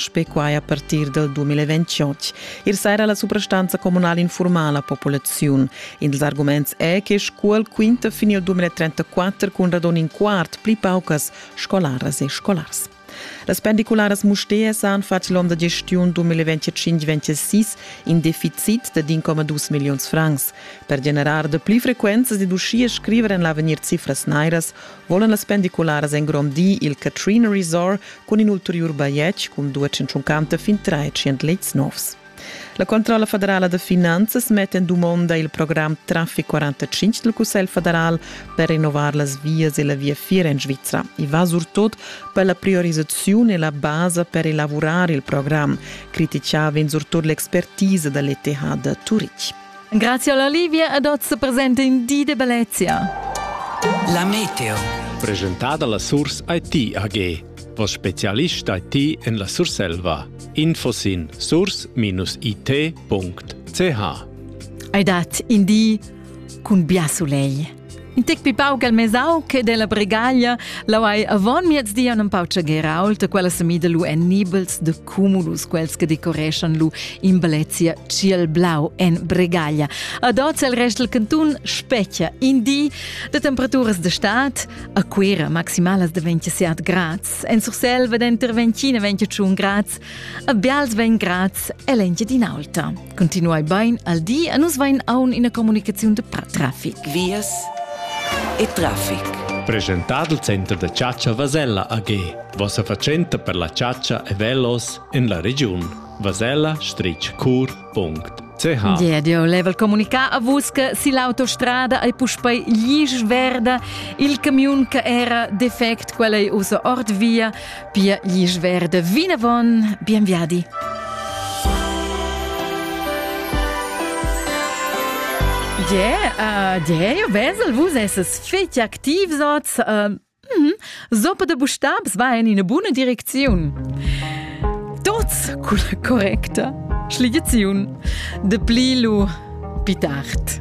Spe quai a partir dal 2028. Ir saira la suprastanza communal informa la populaziun. Ils arguments è che Scuol quinta fin al 2034 cun radon in quart pli paucas scolaras e scolars. Las pendicularas Mustérs han fatg l'onn da gestiun 2025-26 in deficit da 1,2 milliuns francs. Per generar de pli frequenza ed uschia scriver en l'avegnir cifras nairas volan las pendicularas engrondir il Katrina Resort cun in ulteriur bajetg cun 250 fin 300 lets novs. La Controlla federala de Finanzas mette in domanda il programm Traffic 45 del Cussel federal per rinnovar las vias e la via Fiera in Svizzera e va surtot per la priorizzazione e la base per elaborare il programm, criticava in surtot l'expertise dell'ETH de Turich. Grazie alla Livia ed oz presenta in di de bellezia. La meteo. Presentada la Surs IT AG. Vos specialist IT en la Surselva. Info sin surs-it.ch. Hai dat in di cun bia soleil. In tec pi pauc al mesau che della bregaglia, lau hai avon miezdi an empau tschagherau da quella semida lu en nibels de cumulus quels che decoreschan lu in bellezia ciel blau en bregaglia. Ad oz el rest il cantun specchia in di de temperaturas de stat a Quera maximalas de 27 grads, en Surselva denter 20 e 21 grads, a Bials 20 grads e 20 din alta. Continuai bain al di e nus vain aun ina comunicaziun de trafic. Vias e trafic. Presentado il Center da Chatscha Vasella AG. Vossa fatschenta per la chatscha e velos en la regiun. vasella-cur.ch Yeah, dio leva il comunicà a vus che si l'autostrada è puspei gli verda il camion che era defect quella è usa ord via Pia glisch verde vinavon, bien viadi! Yeah, uh, yeah, eu vesel, vus esses feti activs oz. Uh, mm, Sopa de bustabs va in ina buna direcziun. Tots cu la correcta schligiaziun de pli lu pitart.